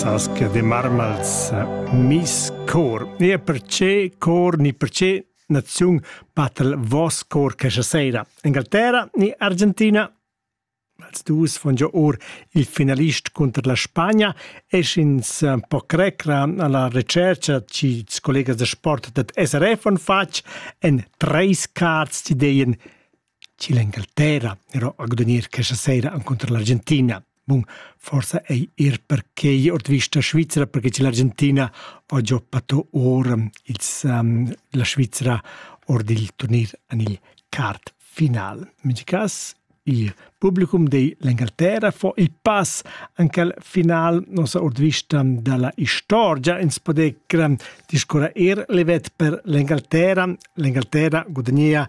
sas che de marmals mis cor ni perce cor ni perce naziun battel vos cor che sera Inglaterra ni Argentina als dus von già or il finalist contro la Spagna e ins eh, po crecra alla recerca ci collegas de sport dat SRF von fatg en treis cards d'ideen chi l'Engalterra però ha gudagnir questa sera encunter l'Argentina. Bun, forsa ei ir perquei ord vista Svizra, perché che l'Argentina va già pato or ils, um, la Svizra ord il turnir en il quart final. In ogni caso, il publicum dell'Inghilterra fa il pass anche al final, non so, ord vista dalla storia, ins poder discorrere er levet per l'Inghilterra. L'Inghilterra guadagna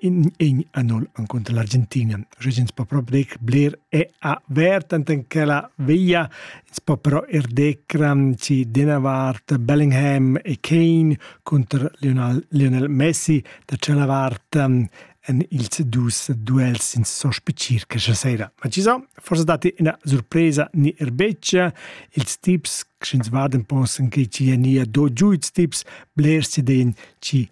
in in anul encunter l'Argentinian. Ins po però dir bler è avert enten che la via ins po però er decram ci Denavart, Bellingham e Kane contro Lionel, Lionel Messi da Celavart ehm, en ils dus duels in sospe circa stasera. Ma ci sono forse dati una sorpresa ni er beccia ils tips che ins guardan possen che ci nia do giù ils tips bler si den ci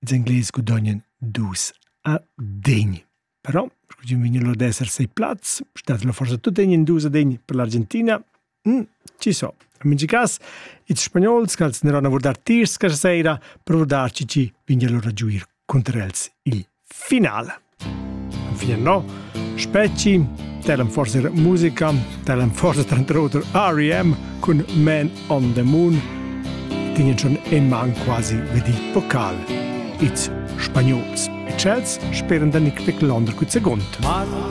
Ils Englais gudognan dus a degn. Però, scu'm vegn lur d'esser sei plaz, statelo forsa tut tegnan dus a degn per l'Argentina. Mm, ci so. In mincha cas, ils spagnols ch'als n'eran a vurdar tiers questa sera per vurdarci ci, vegna lur a giuir cunter els il final. Enfin no Spetgi dall'en forsa musica dall'en forsa tranter oter REM cun Man on the Moon din schon in man quasi vedi vocal ils spagnols e chels speran da Nick Vic Londra cun segund. Martin